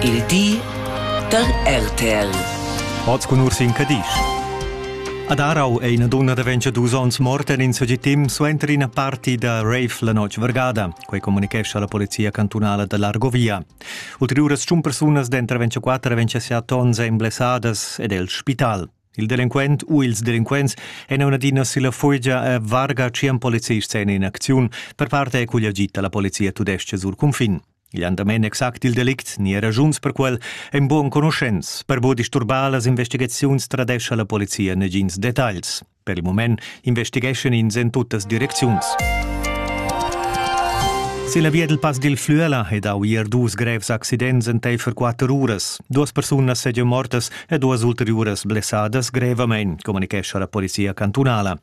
Il di da RTL. Oz cun Ursin Cadisch. Ad Arau è ina dunna da 22 onns morta en in segitim suenter ina party da rave la notg vargada. Quei communicescha la polizia cantunala da l'Argovia. Ulteriuras tschun persunas denter 24 e 27 onns ein blessadas ed el spital. Il delinquent u ils delinquents èn un'adina silla fugia e varga tschien policists en in acziun. Per parte è cugl agit da la polizia tudestga sur cunfin. Igl han damein exact il delict ni era raschuns per quel ein buc enconuschents. Per buca disturbar las investigaziuns tradescha la polizia negins detagls. Per il mument investigeschan ins en tuttas direcziuns. Se la via dil Pass dil Flüela è dau ier dus grevs accidents enteifer quatter uras. Duas persunas segian mortas e duas ulteriuras blessadas grevamein, communichescha la polizia cantunala.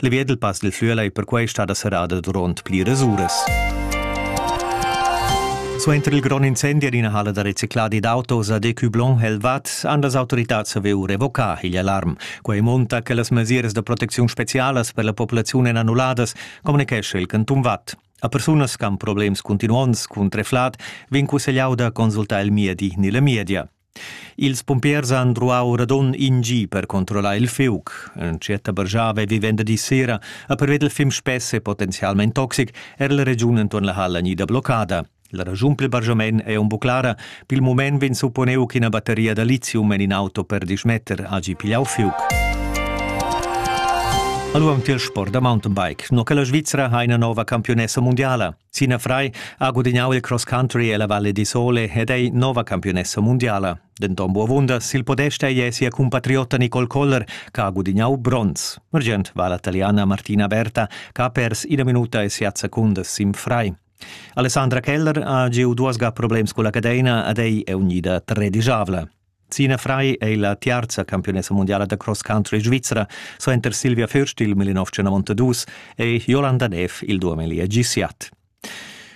Le via dal Pass del Flüela è perquai stada serrada durant pliras uras. Suenter il grond incendi en ina halla da recicladi d'autos a Decublon Helvat han las autoritats saviu revocar igl alarm. Quei monta che las mesiras da protecziun specialas per la populaziun èn annulladas, communicescha il canton Watt. A persunas che han problems continuonds cun treflat vegn cussegliau da consultar il MIEDI ni la MIEDIA. Ils pumpiers han druau radund in gi per controllar il fiug. Entschiet bargiava vi venderdi sera a perveder il fim spess e potenzialmein toxic era la regiun enton la halla gnida bloccada. La ragiun pil bargiament ei aunc buc clara. Pil mument vegn supponeu ch'ina batteria da lithium en in auto per dismetter hagi pigliau fiug. Allora tiel sport da mountainbike. No che la Svizzera ha ina nova campionessa mondiala. Sinafrai ha gudignau il cross country ella Valle di Sole ed ei nova campiunessa mundiala. Denton buavunda sil podest ei sia cumpatriotta Nicole Koller, che ha gudignau bronz. Argient va la taliana Martina Berta, che ha pers ina minuta e siat secundas sin frai. Alessandra Keller ha giu duas ga problems culla cadeina ed ei è unida tredischavla. Zina Frei ei la tiarza campiunessa mundiala da cross country svizra. Suenter Silvia Fürstil 1992 ei Jolanda Neff il duameli a gisiat.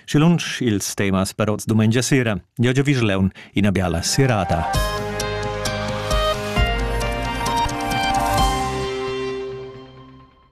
Și lunsch ils temas per oz dumengia sera. Eu Vigileun, ina biala serata.